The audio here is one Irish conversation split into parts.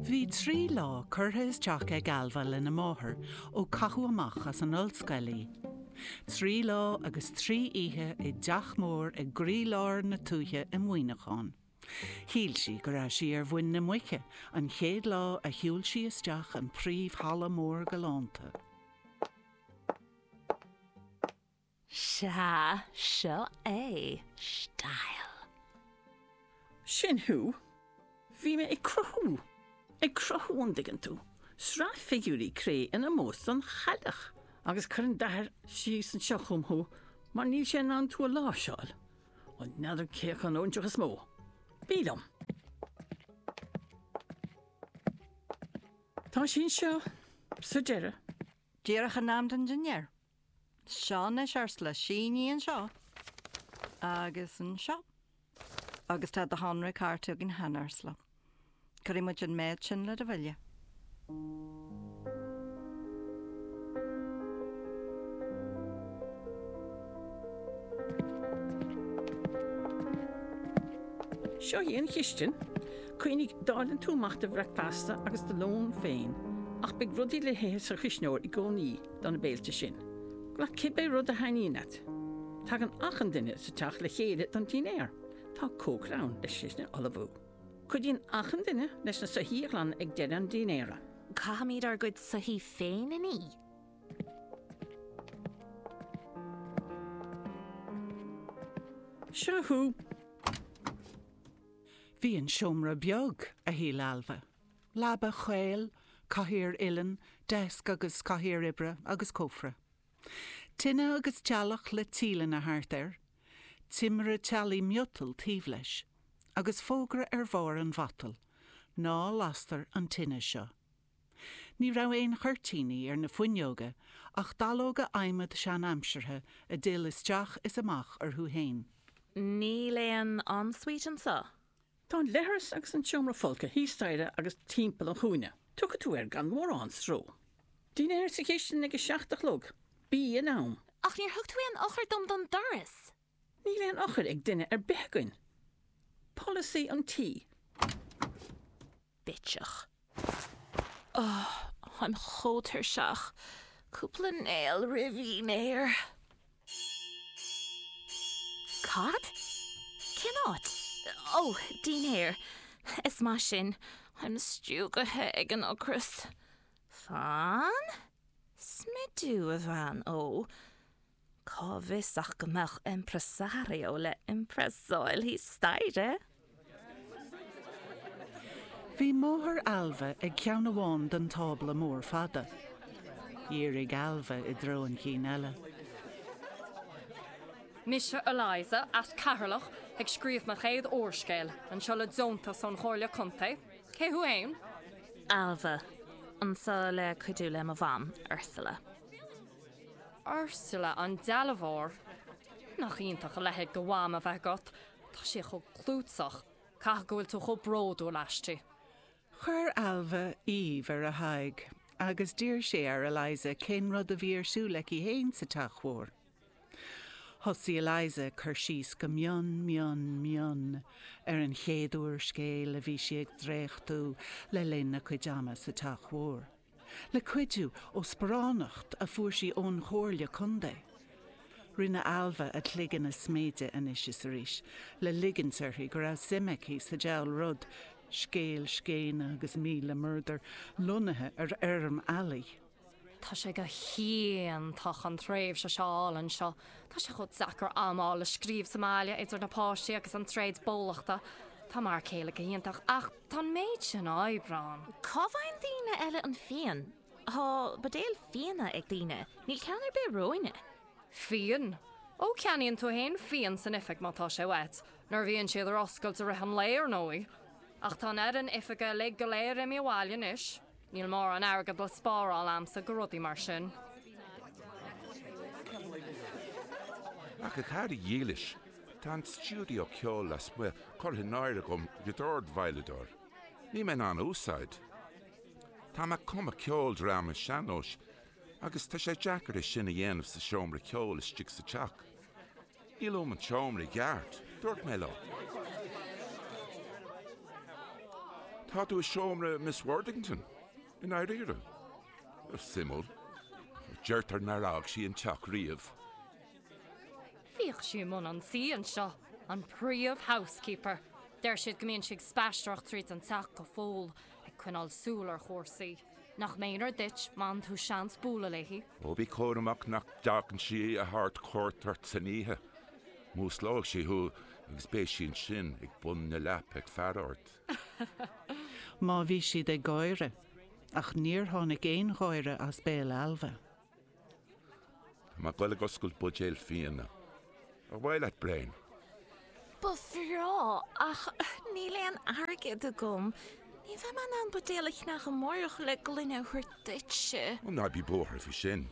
Bhí trí lá curtha isteach ag Ailbhe lena máthair ó caitheadh amach as an ollscoil í. Trí lá agus trí oíche i dteach mór i gcroílár na tuaithe i Muineachán. Shíl sí go raibh sí ar mhuin na muice an chéad lá a shiúil sí isteach an príomh-halla mór galánta. Sea, seo é, style. Sin thú. Bhí mé ag cruthú, ag cruthú, an dtuigeann tú, sraith figiúirí cré in ómós don Chailleach. Agus cuireann d'athair síos anseo chugam thú mar níl sé in ann tú a láimhseáil. Ó, n'fheadar cé acu an óinseach is mó. Bí liom. Tá sí anseo, sa deireadh. Díreach in am don dinnéar. Seo anois arsa Laoise, sínigh anseo agus anseo. Agus tá do shonraí cairte againn cheana ar ndóigh. Cuirfidh muid an méid sin le do bhille. Seo í an chistin. Cuimhnigh, déanann tú amach do bhricfeasta agus do lón féin, ach beidh rudaí le hithe sa chuisneoir i gcónaí. do na béilte sin. Glac cibé rud a thaitníonn leat. Tagann achan duine sa teach le chéile don dinnéar. Tá cócaire ann leis sin a ullmhú. Cuidíonn achan duine leis na soithí a ghlanadh ag deireadh an dinnéara. Caithfimid ár gcuid soithí féin a ní. Seo thú. Bhí an seomra beag, a shíl Ailbhe. Leaba chaol, cathaoir uilleann, deasc agus cathaoir oibre agus cófra. Tine agus teallach le tíleanna thart air. Timire teallaigh miotail taobh leis. Agus fógra ar bharr an mhatail, Ná lastar an tine seo. Ní raibh aon chuirtíní ar na fuinneoga ach dallóga adhmaid seanaimseartha a d'fhill isteach is amach orthu féin. Níl aon en-suite anseo. Tá an leithreas agus an seomra folctha thíos staighre agus timpeall an chúinne. Tiocfaidh tú air gan mórán stró. Dinnéar sa chistin ag a seacht a chlog. Bí in am. Ach níor thug tú aon eochair dom don doras! Níl aon eochair ag duine ar bith againn. Polasaí an tí. bitseach. Ohh, táim chomh tuirseach. Cúpla néal roimh dhinnéar. Cad? Cén áit? Ó, dinnéar. Is maith sin. Táim stiúgtha ag an ocras. Fan? Smidiú, a bhean. Ó. Cá bhfios ach go mbeadh impresario le impresáil thíos staighre? Bhí máthair Ailbhe ag ceann amháin den tábla mór fada. Dhírigh Ailbhe i dtreo an chinn eile. Mise Eliza, as Ceatharlach, ag scríobh mo chéad úrscéil, anseo le deontas ón Chomhairle Contae. Cé thú fhéin? Ailbhe, anseo le cuidiú le mo mham, Ursula. Ursula an dealbhóir. Nach iontach a leithéid de mham a bheith agat. Tá sí chomh clúiteach. Caithfidh go bhfuil tú chomh bródúil aisti. Chuir Ailbhe aoibh ar a haghaidh agus d'iarr sí ar Eliza cén rud a bhí ar siúl aici fhéin sa teach mhór. Thosaigh Eliza ag cur síos go mion, mion, mion ar an chéad úrscéal a bhí sí ag dréachtú le linn a cuid ama sa teach mhór. Le cuidiú ó sparánacht a fuair sí ón Chomhairle Contae, rinne Ailbhe a cloigeann a sméideadh anois is arís le ligint uirthi go raibh suim aici sa diabhal rud, scéal scéine agus míle murdar lonnaithe ar fheirm eallaigh. Tá sé go hiontach an tréimhse seo a fháil anseo. Tá sé chomh deacair am a fháil le scríobh sa mbaile, idir na páistí agus an tréad bólachta. Tá m'fhear céile go hiontach ach. Tá an méid sin oibre ann. Cá bhfaigheann daoine eile an fíon? Tá buidéil fíona ag daoine, níl ceann ar bith romhainne. Fíon? Ó, ceannaíonn tú fhéin fíon san oifig má tá sé uait, nuair a bhíonn siad ar oscailt i rith an lae, ar ndóigh. Ach tá an fhoireann oifige uilig go léir imithe abhaile anois. Níl mórán airgead le spáráil a'msa do rudaí mar sin. Ach a chara dhílis, tá an stiúideo ceoil lasmuigh curtha in áirithe agam le dord-veidhleadóir. Níl mé in ann a úsáid. Tá mé ag cumadh ceoldráma sean-nóis agus tá sé deacair é sin a dhéanamh sa seomra ceoil istigh sa teach. Níl fuaim an tseomra i gceart, dúirt mé leo. Tá tú i seomra Miss Worthington, i ndáiríre? Suimiúil. Deirtear nár fhág sí an teach riamh. Bhíodh sí i mbun an tí anseo, an príomh housekeeper. Deir siad go mbíonn sí ag spaisteoireacht tríd an teach go fóill, ag coinneáil súil ar chúrsaí. Nach méanar duit má fhaigheann tú seans bualadh léi. Ó bí cúramach nach dtagann sí a thabhairt cuairt ort san oíche. Músclóidh sí thú agus beidh sí ansin ag bun na leapa ag faire ort. Má bhí siad ag gáire. Ach níor tháinig aon gháire as béal Ailbhe. Tá mé ag dul ag oscailt buidéal fíona. Ar mhaith leat braon? Ba bhreá, ach níl aon airgead agam. Ní bheidh mé in ann buidéal a cheannacht amárach le gloine a thabhairt duitse. Ó, ná bí buartha faoi sin.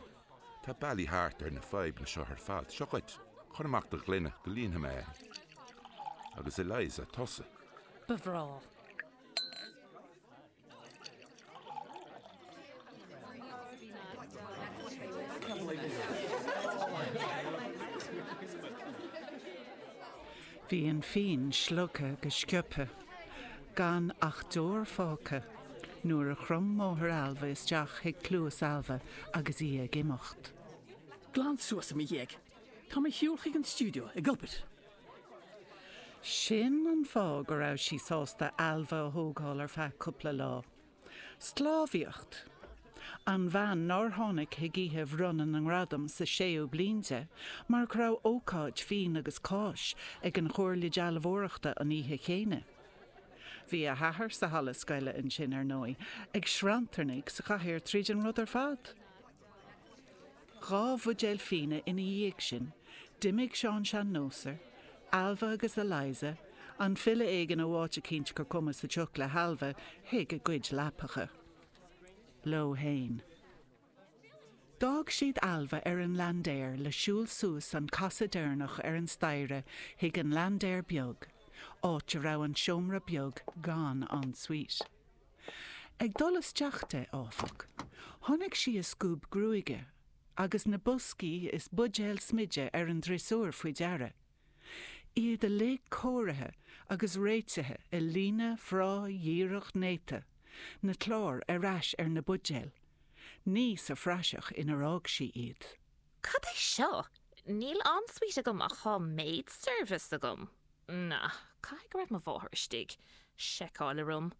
Tá bealaí thart ar na fadhbanna seo ar fad. Seo dhuit, cuir amach do ghloine go líonfaidh mé é. Agus Eliza, tusa? Ba bhreá. Bhí an fíon slogtha go sciobtha, gan ach deor fágtha, nuair a chrom máthair Ailbhe isteach chuig cluas Ailbhe agus í ag imeacht. Glan suas i mo dhiaidh. Tá mé ar shiúl chuig an stiúideo ag obair. Sin an fáth go raibh sí sásta Ailbhe a thógáil ar feadh cúpla lá. Sclábhaíocht. An bhean nár tháinig chuig oíche bhronnadh na ngradam sa séú bliain di mar go raibh ócáid fíon agus cáis ag an Chomhairle Dealbhóireachta an oíche chéanna. Bhí a hathair sa halla scoile ansin, ar ndóigh, ag srannfartaigh sa chathaoir tríd an rud ar fad. Dhá bhuidéal fíona ina dhiaidh sin, d'imigh Seán Sean-Nósar, Ailbhe agus Eliza, an file éigin ó áit eicínt gur cuma sa tsioc le hAilbhe, chuig a gcuid leapacha. Leo fhéin. D'fhág siad Ailbhe ar an laindéar le siúl suas an casadh deireanach ar an staighre chuig an laindéar beag, áit a raibh an seomra beag gan en suite. Ag dul isteach di, áfach, thug sí a scuab gruaige agus na boscaí is buidéil smididh ar an driosúr faoi deara, iad uilig cóirithe agus réitithe i líne bhreá dhíreach néata, na cláir ar ais ar na buidéil, ní sa phraiseach inar fhág sí iad. Cad é seo? Níl en suite agam ach tá maid service agam. Na, caithfidh go raibh mo mháthair istigh. Seiceáil orm.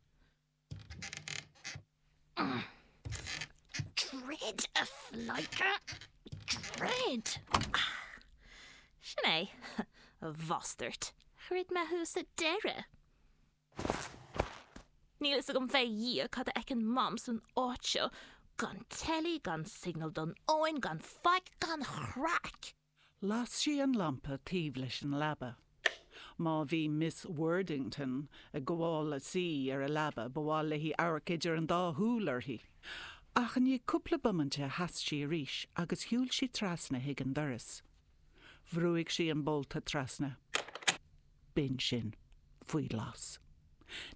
Troid, a phleidhce! Troid! Sin é, a bhastairt. Throid mé thú sa deireadh. Níl fhios agam fé Dhia cad a fheiceann Mam san áit seo. Gan teilí, gan signal don fhón, gan faic, gan chraic! Las sí an lampa taobh leis an leaba. Má bhí Miss Worthington ag gabháil a shuí ar a leaba, ba mhaith léi amharc idir an dá shúil uirthi. Ach i ndiaidh cúpla bomainte sheas sí arís agus shiúil sí trasna chuig an doras. Bhrúigh sí an bolta trasna. B'in sin. Faoi ghlas.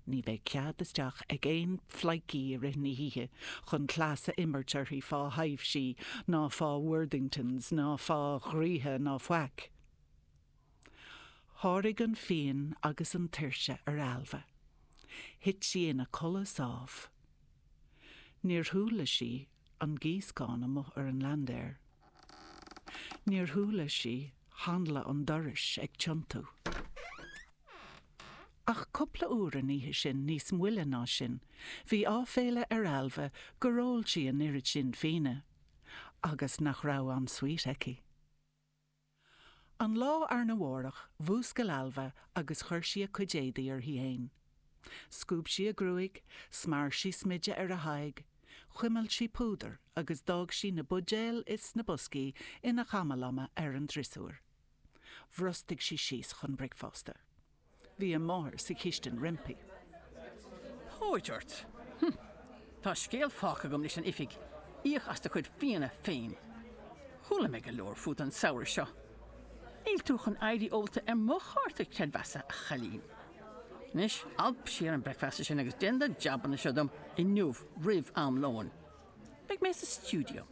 Ní bheidh cead isteach ag aon phleidhcí i rith na hoíche chun cleas a imirt uirthi fá thaibhsí ná fá Worthingtons ná fá dhraoithe ná faic. Sháraigh an phian agus an tuirse ar Ailbhe. Thit sí ina codladh sámh. Níor chuala sí an gíoscán amuigh ar an landair. Níor chuala sí hanla an dorais ag tiontú. Ach cupla uair an oíche sin, níos moille ná sin, bhí áiféala ar Ailbhe gur ól sí an oiread sin fíona agus nach raibh en suite aici. An lá arna mhárach, mhúscail Ailbhe agus chuir sí a cuid éadaí uirthi fhéin. Scuab sí a gruaig, smear sí smideadh ar a haghaidh, chuimil sí púdar agus d'fhág sí na buidéil is na boscaí ina chamalama ar an driosúr. Bhrostaigh sí síos chun bricfeasta. Bhí a máthair sa chistin roimpi. Póit ort! Hm! Tá scéal fágtha agam leis an oifig, íoc as do chuid fíona féin! Chuala mé go leor fút an samhradh seo. Níl tú chun éirí ólta ar mo chárta creidmheasa, a chailín. Anois, alp siar an bricfeasta sin agus déan na jabanna seo dom inniu roimh am lóin. Beidh mé sa stiúideo.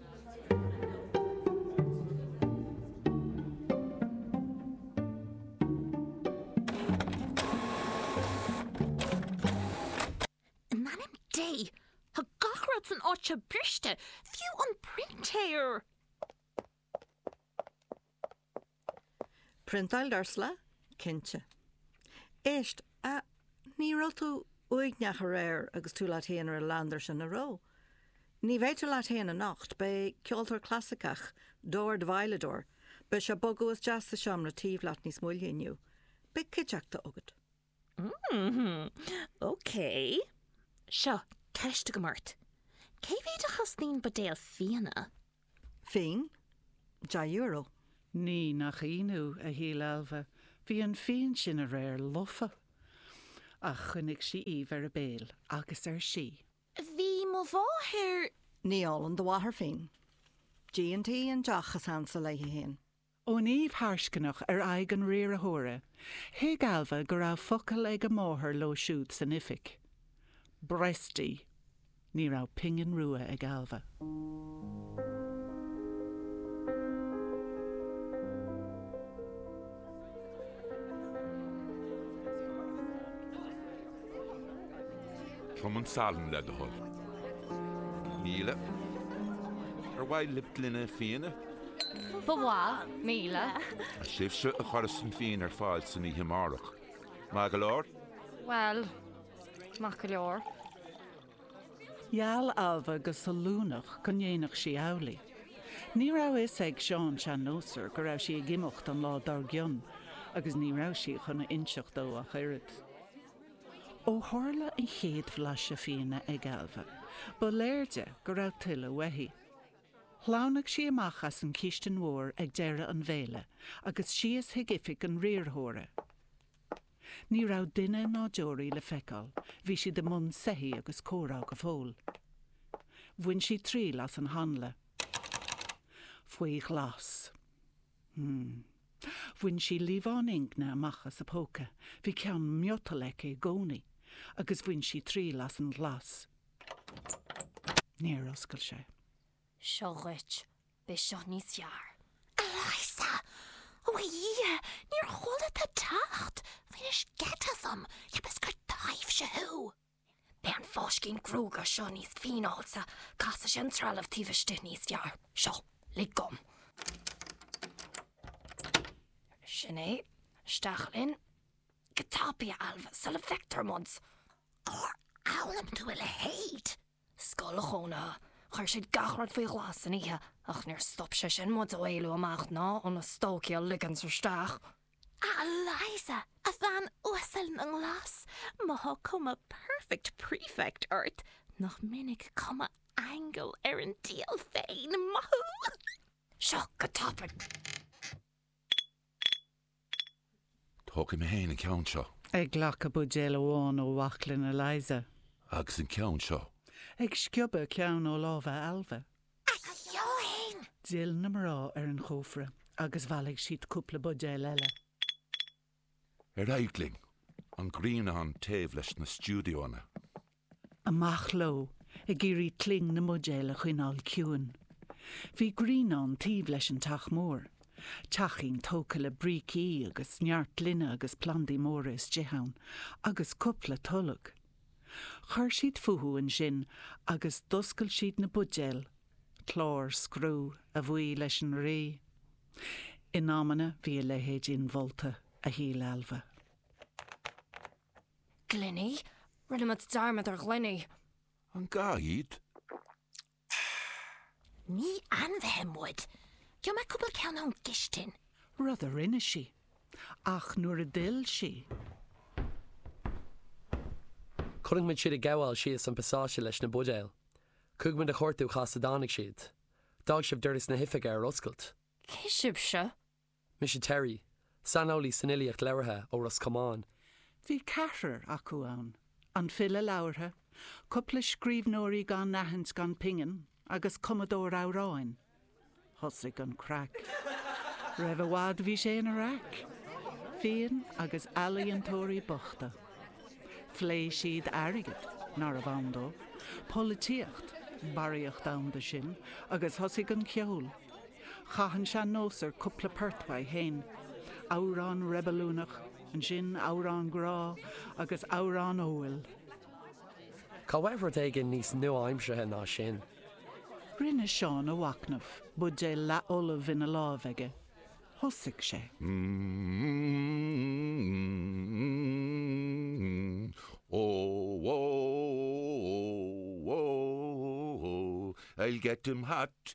In ainm Dé! Tá gach rud san áit seo briste, fiú an printéir! Priontáil d'Ursula? Cinnte. Éist, a, ní raibh tú uaigneach aréir agus tú leat féin ar an landair sin, an raibh? Ní bheidh tú leat féin anocht, beidh ceoltóir clasaiceach, dordveidhleadóir, beidh sé ag bogadh isteach sa seomra taobh leat níos moille inniu. Beidh cuideachta agat. Mmm, ok. Seo, ceist agam ort. Cé mhéad a chosnaíonn buidéal fíona? Fíon? Deich euro? Ní nach ionadh, a shíl Ailbhe, bhí an fíon sin aréir lofa. Ach choinnigh sí aoibh ar a béal agus ar sí. Bhí mo mháthair. Ní ólann do mháthair fíon? G&T an deoch is ansa léi féin. Ón aoibh thuisceanach ar aghaidh an riarthóra, thuig Ailbhe go raibh focal ag a máthair leo siúd san oifig. Breast í! Ní raibh pingin rua ag Ailbhe. Tabhair dom an salann le do thoil. Míle. Ar mhaith libh gloine fíona? Ba mhaith, míle. Is sibhse a chuireas an fíon ar fáil san oíche amárach. Maith go leor? Bhuel, maith go leor. Gheall Ailbhe go sollúnach go ndéanfadh sí amhlaidh. Ní raibh a fhios ag Seán Sean-Nósar go raibh sí ag imeacht an lá dár gcionn agus ní raibh sí chun a inseacht dó ach oiread. Ó tharla an chéad bhlaiseadh fíona ag Ailbhe, ba léir di go raibh tuilleadh uaithi. Shleamhnaigh sí amach as an chistin mhór ag deireadh an bhéile agus síos chuig oifig an riarthóra. Ní raibh duine ná deoraí le feiceáil, bhí siad i mbun soithí agus comhrá go fóill. Bhain sí triail as an hanla. Faoi ghlas. Hmm. Bhain sí líomhán ingne amach as a póca, bhí ceann miotail aici i gcónaí, agus bhain sí triail as an ghlas. Níor oscail sé. Seo dhuit. Beidh seo níos fearr. Eliza! Ó a Dhia, níor chuala tú ag teacht! Bhainis geit asam! Cheapas gur taibhse thú! Beidh an fáiscín gruaige seo níos fíneálta, casfaidh sé an trealamh taobh istigh níos fearr. Seo, lig dom. Sin é. Isteach linn. Go tapaidh, a Ailbhe, sula bhfeictear muid. Cár fhoghlaim tú a leithéid? Scoil chónaithe. Chuir siad gach rud faoi ghlas san oíche, ach níor stop sé sin muid ó éalú amach ná ó na stócaigh a ligint isteach. Ah, Eliza, a bhean uasail na nglas, má thá cuma perfect prefect ort, nach minic cuma aingil ar an diabhal féin, maith thú! Seo go tapaidh! Tógfaidh mé féin an ceann seo. Ag glacadh buidéal amháin ó bhaclainn Eliza. Agus an ceann seo. Ag sciobadh ceann ó lámha Ailbhe. A Sheáin! D'fhill na mná ar an chófra agus bhailigh siad cúpla buidéal eile. Ar aghaidh linn, an grianán taobh leis na stiúideoanna. Amach leo, ag iarraidh cling na mbuidéal a choinneáil ciúin. Bhí grianán taobh leis an teach mór. Teachín tógtha le brící agus neart gloine agus plandaí móra istigh ann, agus cúpla tolg. Chuir siad fúthu ansin agus d'oscail siad na buidéil, clár scriú, a bhuí leis an Rí. In amanna bhí a leithéid inmholta, a shíl Ailbhe. Gloiní? Rinne muid dearmad ar ghloiní. An gá iad? Tch. Ní ainmhithe muid. Gheobhaidh mé cúpla ceann ón gcistin. Rud a rinne sí. Ach nuair a d'fhill sí. Chonaic muid iad ag gabháil síos an pasáiste leis na buidéil. Chuaigh muid a chuartú cá has a dtáinig siad. D'fhág sibh doras na hoifige ar oscailt. Cé sibhse? Mise Terry, saineolaí san fhilíocht labhartha ó Ros Comáin. Bhí ceathrar acu ann, an file labhartha, cúpla scríbhneoirí gan aithint gan pingin agus cumadóir amhráin. Thosaigh an craic. Roimh i bhfad bhí sé ina raic. Fíon agus ealaíontóirí bochta. Phléigh siad airgead, nárbh ann dó, polaitíocht, barraíocht ann dó sin, agus thosaigh an ceol. Chaith an sean-nósaí cúpla port uaidh féin, amhrán reibiliúnach, ansin amhrán grá agus amhrán óil. Caith uait rud éigin níos nua-aimseartha ná sin? Rinne Seán a mhachnamh, buidéal leathfholamh ina lámh aige. Thosaigh sé. I'll get him hot,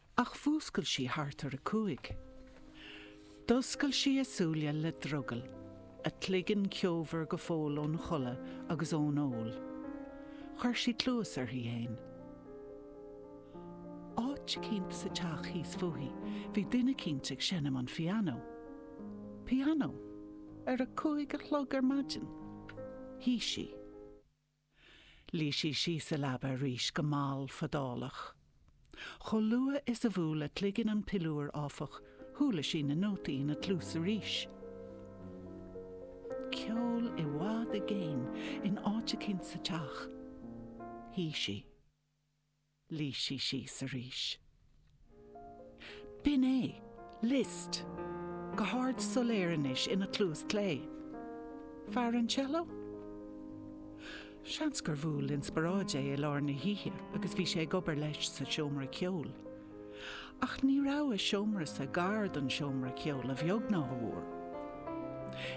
Ach mhúscail sí thart ar a cúig. D'oscail sí a súile le drogall, a cloigeann ceomhar go fóill ón chodladh agus ón ól. Chuir sí cluas uirthi fhéin. Áit eicínt sa teach thíos fúithi bhí duine eicínt ag seinm an phianó. Pianó? Ar a cúig a chlog ar maidin? Shuigh sí. Luigh sí síos sa leaba arís go mall fadálach. Chomh luath is a bhuail a cloigeann an piliúr, áfach, chuala sí na nótaí ina cluas arís. Ceol i bhfad i gcéin in áit eicínt sa teach. Shuigh sí. Luigh sí síos arís. B'in é. Liszt. Go hard soiléir anois ina cluas clé. Fear an cello? Seans gur bhuail inspioráid é i lár na hoíche agus bhí sé ag obair leis sa seomra ceoil. Ach ní raibh a seomrasa gar don seomra ceoil a bheag ná a mhór.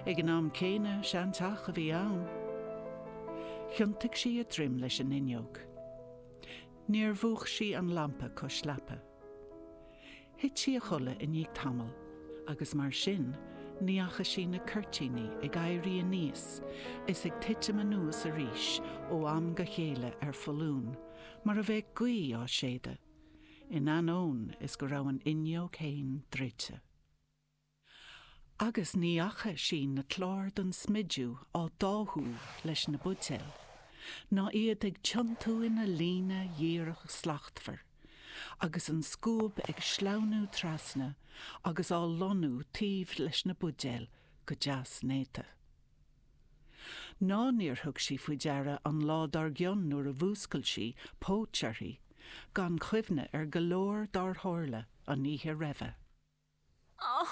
Ag an am céanna, seanteach a bhí ann. Thiontaigh sí a droim leis an fhuinneog. Níor mhúch sí an lampa cois leapa. Thit sí a chodladh i ndiaidh tamaill, agus mar sin, ní fhaca sí na cuirtíní ag éirí aníos is ag titim anuas arís ó am go chéile ar foluain mar a bheadh gaoth á séideadh, in ainneoin is go raibh an fhuinneog féin druidte. Agus ní fhaca sí na cláir den smidiú á dtáthú leis na buidéil, ná iad ag tiontú ina líne dhíreach shlachtmhar, agus an scuab ag sleamhnú trasna agus á lonnú féin taobh leis na buidéil go deas néata. Ná níor thug sí faoi deara an lá dár gcionn nuair a mhúscail sí, póit uirthi, gan chuimhne ar go leor dár tharla an oíche roimhe. Ó,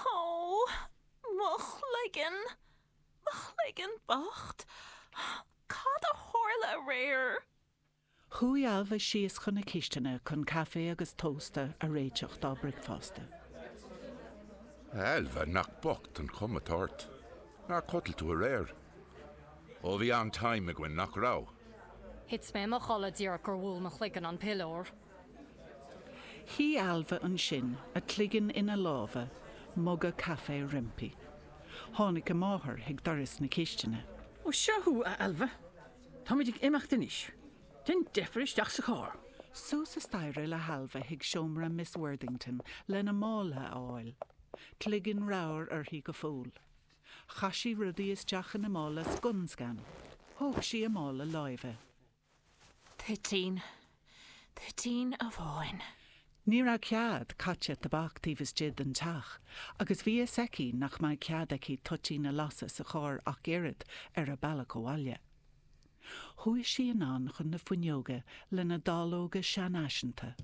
mo chloigeann, mo chloigeann bocht, cad a tharla aréir? Chuaigh Ailbhe síos chun na cistine chun caife agus tósta a réiteach dá bricfeasta. A Ailbhe, nach bocht an chuma atá ort. Ar chodail tú aréir? Ó, bhí an-time againn, nach raibh? Thit mé i mo chodladh díreach gur bhuail mo chloigeann an piliúr. Shuigh Ailbhe ansin, a cloigeann ina lámha, muga caife roimpi. Tháinig a máthair chuig doras na cistine. 'Ó, seo thú, a Ailbhe. Táimid ag imeacht anois. Déan deifir isteach sa charr. Suas an staighre le hAilbhe chuig seomra Miss Worthington lena mála a fháil. Cloigeann ramhar uirthi go fóill. Chaith sí rudaí isteach ina mála scun scan. Thóg sí a mála láimhe. Toitín, toitín amháin. Ní raibh cead caite tobac taobh istigh den teach agus bhí a fhios aici nach mbeadh cead aici toitín a lasadh sa charr ach oiread ar a bealach abhaile. Chuaigh sí anonn chun na fuinneoige lena dáileoga seanfhaiseanta.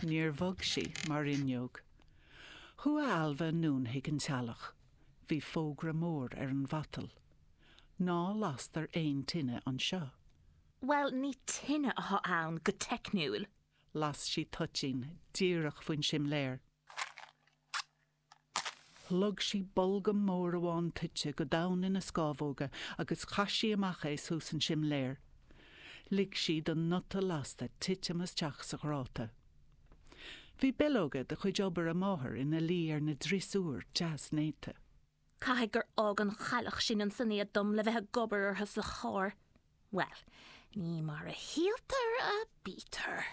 Níor bhog sí mar fhuinneog. Chuaigh Ailbhe anonn chuig an teallach. Bhí fógra mór ar an mhatal. Ná lastar aon tine anseo. Bhuel, ní tine a tá ann, go teicniúil. Las sí toitín díreach faoin simléar. Shlog sí bolgam mór amháin toite go domhain ina scámhóga agus chaith sí amach é suas an simléar. Lig sí don bhun lasta titim isteach sa ghráta. Bhí bileoga de chuid obair a máthar ina luí ar an drisiúr deas néata. Caithfidh gur fhág an chailleach sin ansin iad dom le bheith ag obair orthu sa charr. Bhuel, ní mar a shíltear a bítear.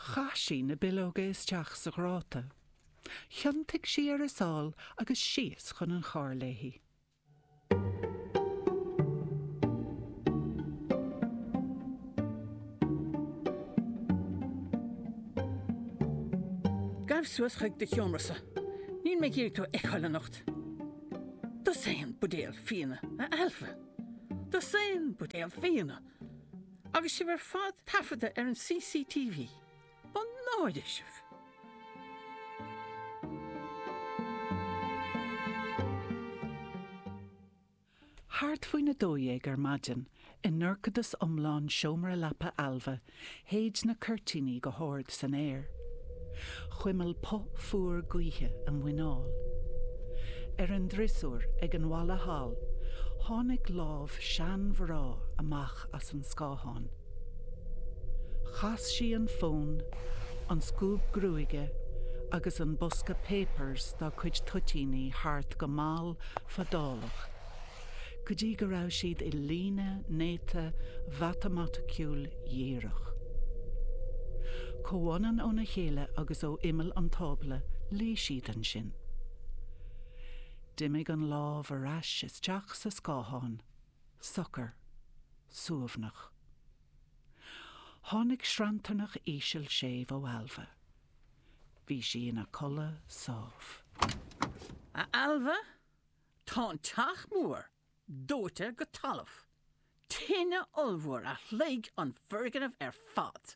Chaith sí na bileoga isteach sa ghráta. Thiontaigh sí ar a sáil agus síos chun an chairr léi. Gabh suas chuig do sheomrasa. Níl mé ag iarraidh tú a fheiceáil anocht. Dosaen buidéal fíona, a Ailbhe. Dosaen buidéal fíona! Agus sibh ar fad taifeadta ar an CCTV. Mo náire sibh! Thart faoin 12 ar maidin, i ndorchadas iomlán seomra leapa Ailbhe, shéid na cuirtíní go hard san aer. Chuimil puth fuar gaoithe a muineál. Ar an driosúr ag an bhalla thall tháinig lámh seanmhná amach as an scáthán. Chas sí an fón, an scuab gruaige agus an bosca 'papers' dá cuid toitíní thart go mall fadálach go dtí go raibh siad i líne néata mhatamaiticiúil dhíreach. Comhionann óna chéile agus ó imeall an tábla, luigh siad ansin. D'imigh an lámh ar ais isteach sa scáthán, socair, suaimhneach. Tháinig sranntarnach íseal séimh ó Ailbhe. Bhí sí ina codladh sámh. A Ailbhe, Tá an teach mór dóite go talamh. Tine ollmhór a shloig an foirgneamh ar fad.